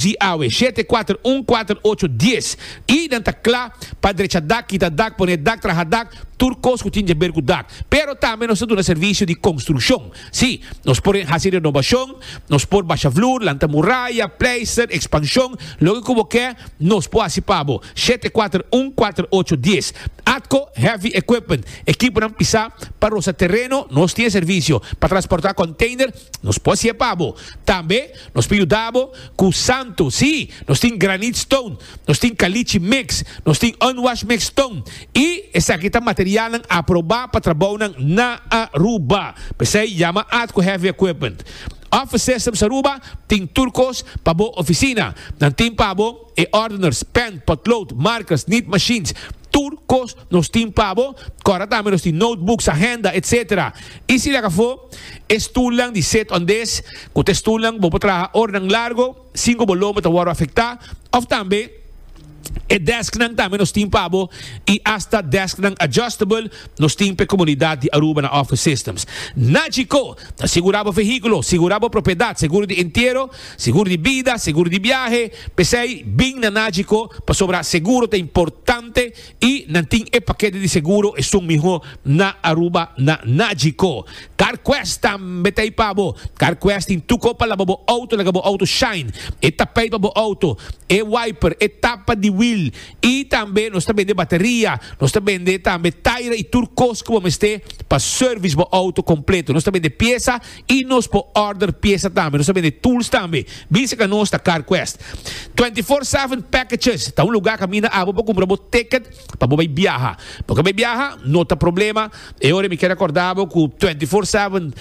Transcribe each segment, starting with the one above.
Di awe, shete, kuater, un, kuater, ocho, dies, i nan ta kla pa drecha dak, kita dak, pone dak, traha dak, tur kos ku tin dje ber ku dak. Pero tambe nos ta duna servisio di konstrukshon. Sí, nos por hasi renobashon, nos por basha vloer, lanta muraya, pleister, ekspanshon, loke ku bo ke, nos por hasi pa bo, shete, kuater, un, kuater, ocho, dies. Atco Heavy Equipment, ekiponan pisá pa rosa tereno, nos tin e servisio. Pa transportá konteiner, nos por hasié pa bo. Tambe. Nos por yuda bo cu santo. Sí, nos tin granite stone, nos tin caliche mix, nos tin unwashed mix stone y esaki ta materialnan aproba pa trabounan na Aruba. P'esey yama Ad cu Heavy Equipment. Office Systems Aruba tin tur cos pa bo oficina. Nan tin pa bo e ordeners, pen, potlood, markers, nit machines, Tur kos nos tin pa bo, kòrda tambe nos tin notebooks, agenda, etc. I si lak afó, e stulnan di set on des, ku ta e stulnan ku bo por traha oranan largo sin ku bo lomba ta wòrdu afektá, òf tambe e desknan tambe nos tin pa bo i asta desknan adjustable nos tin pa e komunidat di Aruba na Office Systems. Nagico ta sigurá bo vehíkulo, sigurá bo propiedat, seguro di entiero, Segur di bida, segur di biahe, p'esei bin na Nagico pasobra seguro ta importante y nan tin e pakete di seguro esun miho na Aruba na Nagico. Carquest tambe ta ei pa bo. Carquest tin tuko pa laba bo auto laga bo auto shine, e tapijt pa bo auto, e wiper, e tapa di wiel y tambe nos ta bende bateria, nos ta bende tambe taira y tur kos ku bo mester pa service bo auto completo. Nos ta bende piesa Y nos por order pieza tambe. Nos ta bende tools tambe. Bin seca nos ta CarQuest. Twenty Four Seven Packages ta un lugar caminda abo por cumpra bo ticket pa bo bay biaha. Bo ke bay biaha? No ta problema. E ora mi ke recorda bo cu Twenty Four Seven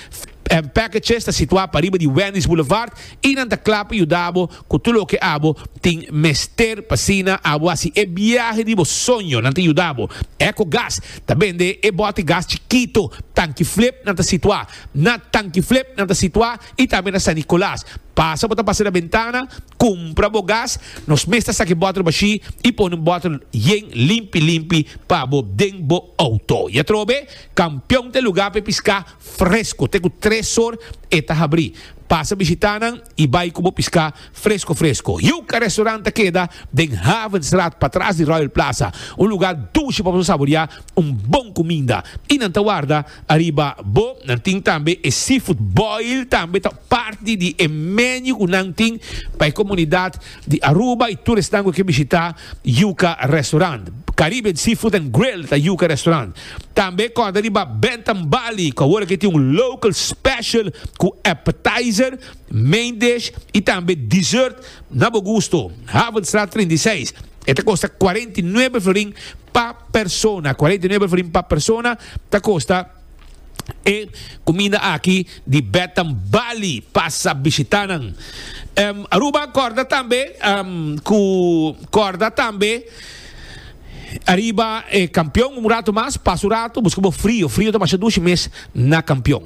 Packages ta situa pariba di Wendy's Boulevard y nan ta cla pa yuda bo cu tur loke abo tin mester pa asina abo haci e biahe di bo soño. Nan ta yuda bo. Ecogas ta bende e bote gas chikito, tanki flip, nan ta situa. Na Tankiflip nan ta situá i tambe na San Nicolas. Pasa bo ta pasa na bentana, kumpra bo gas. Nos mes ta saki bòtel bashí i pone un bòtel yen limpi limpi pa bo den bo outo. I atrobe, Kampion ta e lugá pa e piská fresko. Te ku tres or e ta habrí. Pasa bishitá nan i bai ku bo piská. Fresco fresco. Yuca Restaurant ta keda den Havenstraat patras di Royal Plaza, un luga dushi pa boso saborea un bon cuminda. Y nan ta warda ariba bo. Nan tin tambe e seafood boil tambe ta parti di e menu cu nan tin pa e comunidad di Aruba y tur esnan cu ke bishita Yuca Restaurant. Caribbean Seafood and Grill ta Yuca Restaurant. Tambe corda riba Bentham Barley cu awor a ke tin un local special cu appetizer. Main dish y tambe dessert na bo gusto. Havenstraat treinta i seis. E ta kosta kuarenta i nuebe florin pa persona. Kuarenta i nuebe florin pa persona ta kosta e kuminda aki di Betam Bali. Pasa bishita nan. Aruba kòrda tambe ku kòrda tambe ariba e Kampion un ratu mas. Pasa un ratu buska bo frio. Frio ta masha dushi mes na Kampion.